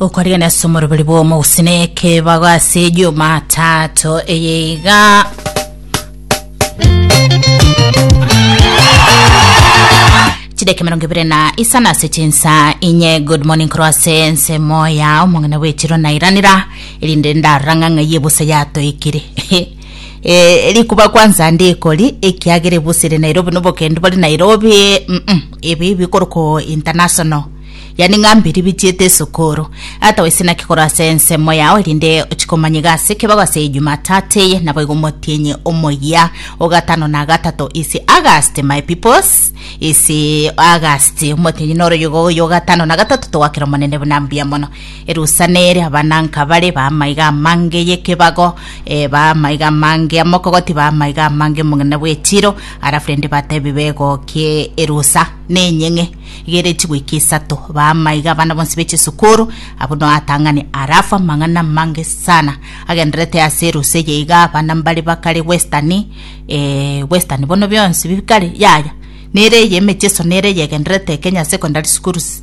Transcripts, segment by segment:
okorigania ase omoroberi bw'omogusine ekebago ase ejumataato eye iga chideke mirongo ibere na isana ase chinsa inye good morning korwa ase ensemo ya omong'ina bw'echiro nairanera erinde ndarora ng'a ng'ai ebusa yatoikire Eh, rikuba kwanza ndi ikori ekiagere busire Nairobi nobokendu bari Nairobi mm -mm, ebi bikoroko international yani ng'ambiri bitiete esukuru ata wese naki koro ase ensemo yao erinde chikomanyiga ase kebago ase Jumatatu eye naboigo motienye omoyia ogatano na gatato is August my peoples is August motienye noroyigo oyo ogatano na gatato togakera omonene buna mbuya mono Erusa nere abananka bare b'amaiga amange y'ekebago, eh, b'amaiga amange amokogoti, b'amaiga amange omong'ina bw'echiiro, arafu rende batebe begokie erusa nenyeng'e igere chigoika isato, b'amaiga abana bonsi be chisukuru, abwo no atang'ane, arafu amang'ana amange sana agenderete ase erusa eye iga abana mbare bakare Western, eh, Western bono bionsi bikare, yaya, nere eye emechie iso nere eye egenderete Kenya Secondary Schools.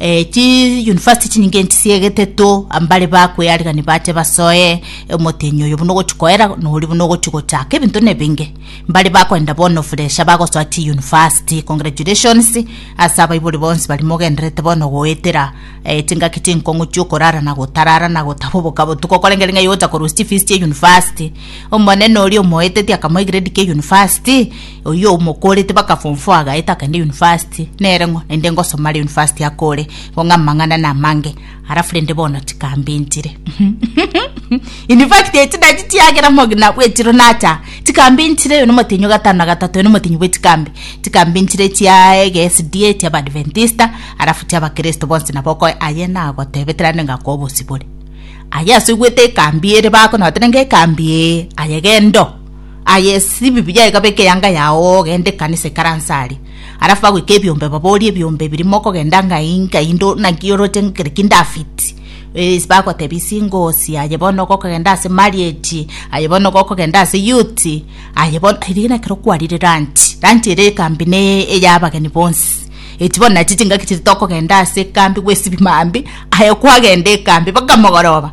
Eh, chi university chinyinge nchisiegete to ambare bakwe arigani bache basoe omotenyi oyo buna ogochi koera nori buna ogochi gochaka ebinto nebinge mbare bakoenda bono fresha bagosoa chi university congratulations ase abaibori bonsi bari mogenderete bono goetera eh, chingaki chinkong'u chiokorara na gotarara na gotaba oboka botuko korengere ng'ai ogocha korusia chifees chia university omonene oria omoetetie akamoa egrade kia university Oyio omokorete baka form four agaeta akagenda university nere ng'o naende ngosoma are university akore igo ng'a amang'ana namange alafu rende bono tikambintire in fact echidadi chiagera mogina bwechiro nacha tikambintire oyo nomotenyo gatano na gatato oyo nomotenyo bwechikambi tikambintire chia ege SDA chia abadventista alafu chia abakristo bonsi nabo okoe aye nagotebetera nde ngakwa obosibore aye ase oigwete ekambi ere bakona batera nge ekambi ee aye gendo Aye esibibi yaye ekabe ekeanga yao ogende ekanisa ikaranse aria. Alafu agoika ebiombe baborie ebiombe biri mokogenda ngai ngai ndo naki oroche ngekere ki David. Ee bagotebia singosi aye bono gokogenda ase marriage aye bono gokogenda ase youth aye bono riria ekero kwarire lunch lunch ere ekambi ne eya abageni bonsi echi bono nachi chingaki chiria tokogenda ase ekambi gwesibi mambia aye kwagenda ekambi baka mogoroba.